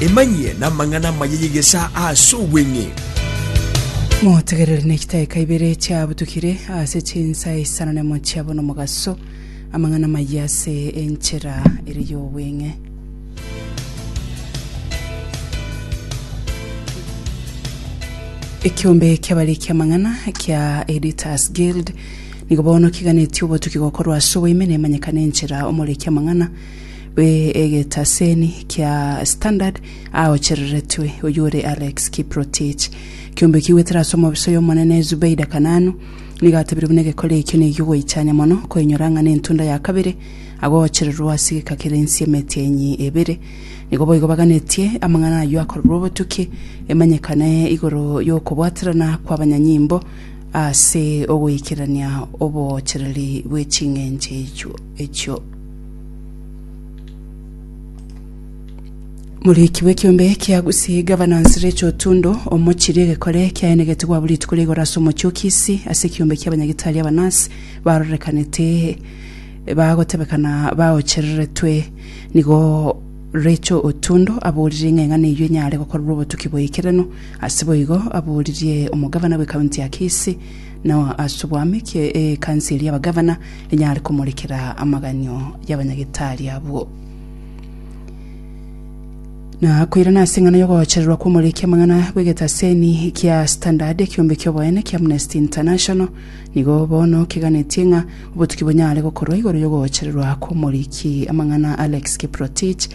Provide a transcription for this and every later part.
Emanyie n'amang'ana amaya y'egesaa ase obweng'e. Motegerere ne chitaeka ibere chiabutukire ase chinsa isano nemo chiabo nomogaso, amang'ana amaya ase enchera ere y'obweng'e. Ekiombe ki'abariki amang'ana kia Editors Guild nigo bono kiganetie obotuki gokorwa ase oboime nemanyekane enchera omoriki amang'ana bw'egetaseni kia Standard aochereretwe oyio ore Alex Kiprotich. Kiombekigwe tera ase omobiso y'Omonene Zubeida Kananu, nigo atebire buna egekore ekio negia ogoichania mono koinyora ng'a n'entunda ya kabere agoochererwe ase egeka kere ensi y'emetienyi ebere. Nigo boigo baganetie amang'ana ayio akorerwe obotuki emanyekane igoro y'okobwaterana kw'abanyanyimbo ase ogoikerania oboochereri bwe ching'encho echio. Moriki bw'ekiombe kia Gusii, Governance, Rachel Otundo, omochirie egekore kiaenegete gwabo rituko ria igoro ase omochie o Kisii ase ekiombe kia abanyagitari aba nurse barorekanete bagotebekana baochereretwe. Nigo Rachel Otundo aborire ng'a eng'ana eyio enyare gokorerwa obotuki bw'ekereno. Ase boigo aboririe omogavana bwe county ya Kisii na ase obwamikie ekansi eria y'abagavana enyare komorekera amaganio y'abanyagitari abwo. Na koirana ase eng'ana y'ogochererwa kw'omoriki amang'ana bw'egetaseni kia Standard, ekiombe ki'oboene kia Amnesty International nigo bono keganetie ng'a obotuki bonyare gokorwa igoro y'ogochererwa kw'omoriki amang'ana Alex Kiprotich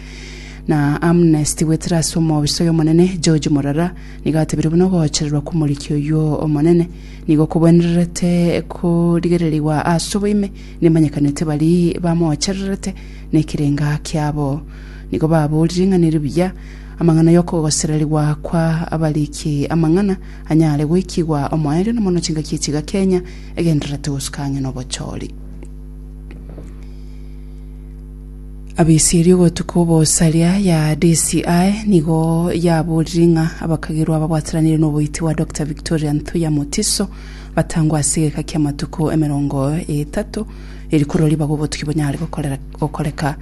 na Amnesty goetera ase omoobiso y'omonene George Morara Nigo atebire buna ogoochererwa kw'Omoriki oyio omonene nigo kogwenererete korigererigwa ase oboime, nemanyekanete baria bamoochererete nekerenga kiabo. Nigo baboorire ng'a neribuya amang'ana y'okogosererigwa kwa abariki amang'ana anyare goikigwa omoerio na mono chingaki echiga Kenya egendererete gosuka ang'e nobochori. Abaisraeli ogotuka obosaria ya DCI nigo yaborire ng'a abakagerwa ababwataranire noboiti bwa Dr Victoria Nthuya Mutiso batangwe ase egeka ki'amatuko emerongo etato eri korwa ribaga obotuki bonyare gokoreka.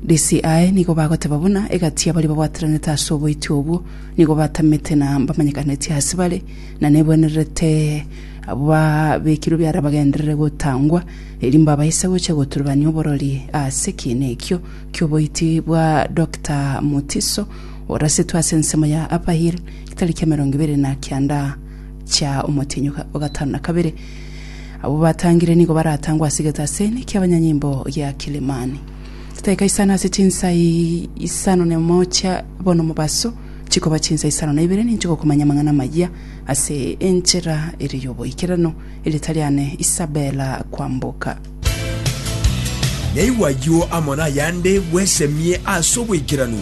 DCI nigo bagoteba buna egati y'abari babwataranete ase oboiti obwo nigo batamete na mbamenyekaneti ase bare na nebwenerete abwo babekirwe biara bagenderere gotangwa eri mbabaise gochia goturubania oborori ase ekiina ekio ki'oboiti bwa Doctor Mutiso, orasetwe ase ensemo ya Upper Hill getaria kia emerongo ebere na kianda chia omotienyi o gatano na kabere. Abwo batangire nigo baratangwe ase egetaseni kia abanyanyimbo gia Kilimani. Chitaika isano ase chinsa isano na emo chia bono mobaso chikoba chinsa isano na ibere ninchigokomanya amang'ana amaya ase enchera ere y'oboikeranu. Erieta riane Isabella Kwamboka. Naigwe ayio amo nayande bwesemie ase oboikeranu.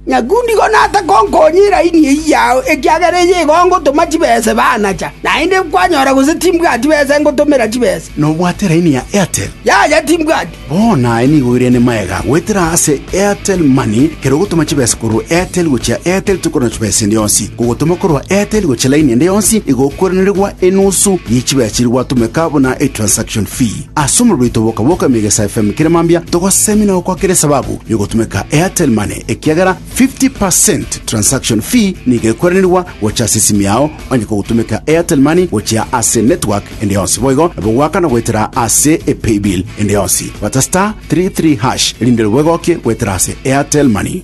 Nyakundigo naase konkonya eraini eyio yao, ekiagera eyio igo ngotoma chibese banacha, naende kwanyora gose timbwati besa engotomera chibesa. Nobwate eraini ya Airtel? Yaya, timbwati. Bono aye nigo oirene maega goetera ase Airtel Money, kera ogotoma chibesa korwa Airtel gochia Airtel tokorora chibesa ende yonsi. Kogotoma korwa Airtel gochia laini ende yonsi igokwerenerigwa enusu ye chibesa chiria gwatomeka buna e transaction fee. Ase omorero oito boka boka Emegesa FM kera mambia togosemi na gokwa kera esababu yogotomeka Airtel Money ekiagera 50 per cent transaction fee nigo ekwerenerigwa gocha ase esimi yao onye kogotomeka Airtel Money gochia ase network ende yonsi boigo nabo goakana goetera ase epaybill ende yonsi. Bata star three three hash erinde nabo egokie goetera ase Airtel Money.